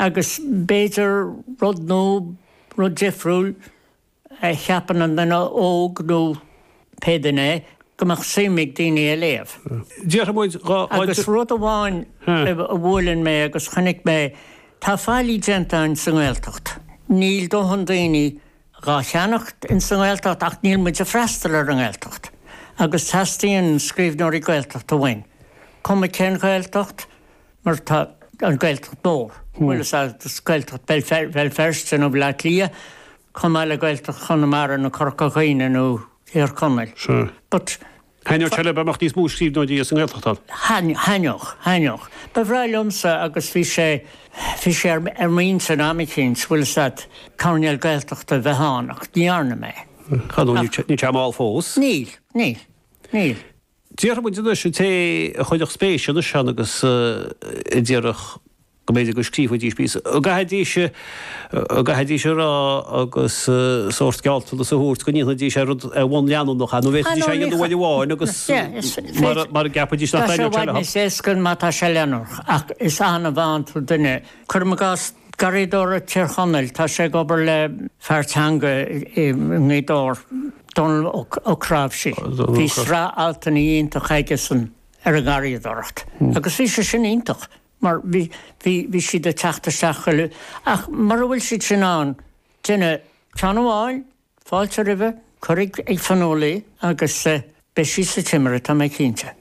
Agus b'fhéidir rud nó rud difriúil a cheapann an duine óg nó pé duine é, go mbeadh suim ag daoine é a léamh. Déarfaidh muid dhá oiread. Agus rud amháin a bhuaileann mé agus chonaic mé, tá faillí déanta in sa nGaeltacht. Níl dóthain daoine dhá cheannacht in sa nGaeltacht ach níl muid ag freastal ar an nGaeltacht. Agus teastaíonn scríbhneoirí Gaeltachta uainn, cuma cén Ghaeltacht, mar tá an Gaeltacht mór, bíodh sé ina Ghaeltacht Bhéal Feirste nó Bhleá Cliath, comh maith le Gaeltacht Chonamara nó Corca Dhuibhne nó Thír Chonaill. But. Thaitneodh sé liom dá mbeadh níos mó scríbhneoirí as an nGaeltacht ann. Thaitneodh, thaitneodh. Ba bhreá liomsa agus bhí sé, bhí sé ar m'intinn am eicínt, bhfuil 'fhios a'd, coirnéal Gaeltachta a bheith ann ach ní dhearna mé. Níl sé mall fós. Níl, níl, níl. Déarfaidh muid anois an té a chuirfeadh spéis anois ann agus a déarfadh go mb'fhéidir go scríobhfaidís píosa, go gcaithfidís, go gcaithfidís a rá agus sórt gealltanas a thabhairt go ndéanfaidís ar rud, ar bhonn leanúnach é, nó an bhféadfaidís é a dhéanamh uair amháin agus mara gceapfaidís nach dtaitneodh sé leo. Tá sé i bhfad níos éasca má tá sé leanúnach, ach is annamh a fhaigheann tú duine, cuirim i gcás garraíodóir i dTír Chonaill, tá sé ag obair le pleanáil teanga i nGaoth Dobhair, Dónall Ó Cnáimhsí. Bhí sraith altanna iontach aigesan ar an ngarraíodóireacht agus bhí sé sin iontach mar bhí siad ag teacht isteach chuile, ach mura bhfuil siad sin ann, déan ceann amháin, fáilte roimhe, cuir ag Fionnuala í agus beidh sí sa Timire, tá mé cinnte.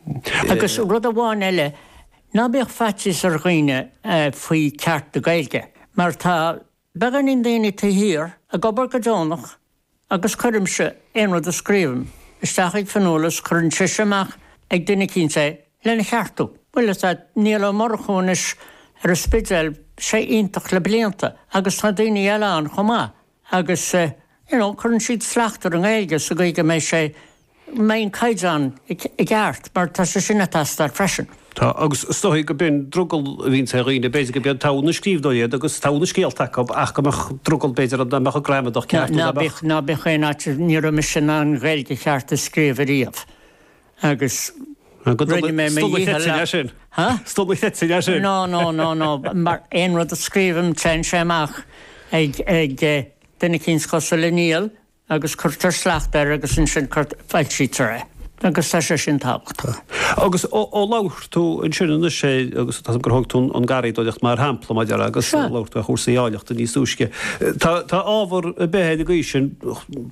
Agus rud amháin eile, ná bíodh faitíos ar dhaoine faoi 'ceart' na Gaeilge mar tá, Bíonn daoine taobh thiar, ag obair go deonach, agus cuirimse aon rud a scríobhaim isteach ag Fionnuala is cuireann sise amach ag duine eicínt é lena cheartú. Bhuel, is ea, Niall Ó Murchú anois ar an Spidéal, bhí sé iontach le blianta, agus tá daoine eile ann chomh maith, agus, you know, cuireann siad slacht ar an nGaeilge sa gcaoi go mbeidh sé mbeidh an caighdeán i gceart, mar tá sé sin ag teastáil freisin. Tá, agus is dóigh gurb in drogall a bhíonns ar dhaoine, b'fhéidir go mbeadh togha na scríbhneoirí iontu agus togha na scéalta acu ach go mbeadh drogall b'fhéidir nach mbeadh an ghramadach ceart nó nach mbeadh. Ná bíodh aon fhaitíos, ní raibh mise in ann Gaeilge cheart a scríobh ariamh agus rinne mé mo dhícheall. Is deacair a chreidiúint sin. Há? Is deacair a chreidiúint é sin. No, no, no, no, mar aon rud a scríobhaim téann sé amach ag duine eicínt cosúil le Niall agus cuirtear slacht air agus ansin foilsítear é agus tá sé sin tábhachtach. Agus ó labhair tú ansin anois é agus tá's agam gur thóg tú an garraíodóireacht mar shampla mar a déarfá agus ó labhair tú ar chúrsaí ábhaillíochta níos túisce, tá ábhar ar bith ar an gcaoi sin,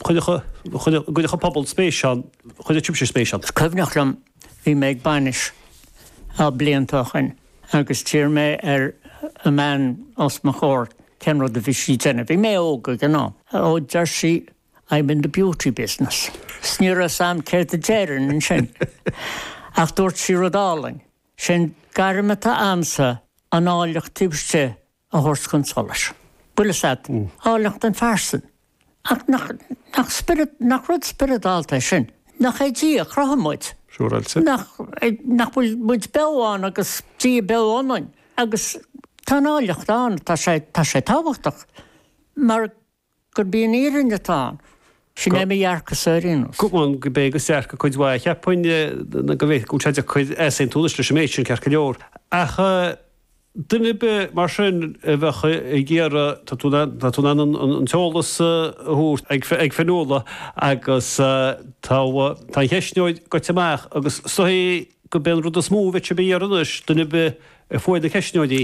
chuirfeadh an pobal spéis ann, chuirfeadh sibhse spéis ann. Is cuimhneach liom Bhí mé ag bainis na blianta ó shin agus d'iarr mé ar an mbean os mo chomhair cén rud a bhí sí ag déanamh. Bhí mé óg ag an am. Ó, deir sí, I'm in the beauty business. 'S ní raibh a fhios a'm céard a déarfainn ansin ach dúirt sí rud álainn, Sé'n gairm atá a'msa, an áilleacht taobh istigh a thabhairt chun solais. Bhfuil a fhios agat, áilleacht an phearsain. Ach nach rud spioradálta é sin? Nach é Dia a chruthaigh muid? Nach bhfuil muid beo ann agus Dia beo ionainn? Agus tá an áilleacht ann, tá sé tábhachtach, mar gurb í an fhírinne atá ann. Sin é mo dhearcadh-sa ar aon nós. Cumann go bé go searc cuid mhaith a cheapfainn go bhféadfadh go bhfuil sé deacair easaontú anois leis an méid sin, ceart go leor. Ach duine ar bith mar sin a bheadh ag iarraidh, tá tú tá tú in ann an t-eolas a thabhairt ag ag Fionnuala agus tá tá an cheistneoir goite amach agus gurb é an rud is mó a bheadh siad ag iarraidh anois, duine ar bith a fuair na ceistneoirí,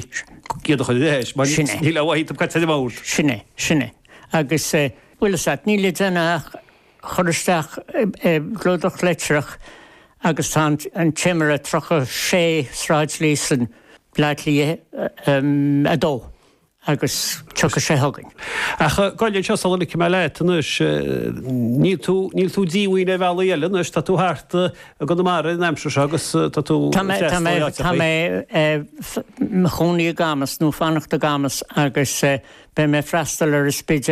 iad a chur ar ais, mar níl a mhaith acu cad tá ann. Sin é, sin é. Agus, bhfuil a fhios agat, níl le déanamh ach cur isteach i gclúdach litreach agus tá An Timire 36 Sráid Líosain, Bleá Cliath 2. Agus tiocfaidh sé chugainn. Ach gabh i leith anseo sula ligfidh mé leat anois. Níl tú, níl tú díomhaoin ar bhealaí eile anois, tá tú thart i gConamara an aimsir seo agus tá tú ag freastal ar áiteachaí. Tá mé i mo chónaí i gCamas, nó fanacht i gCamas, agus beidh mé ag freastal ar an Spidéal.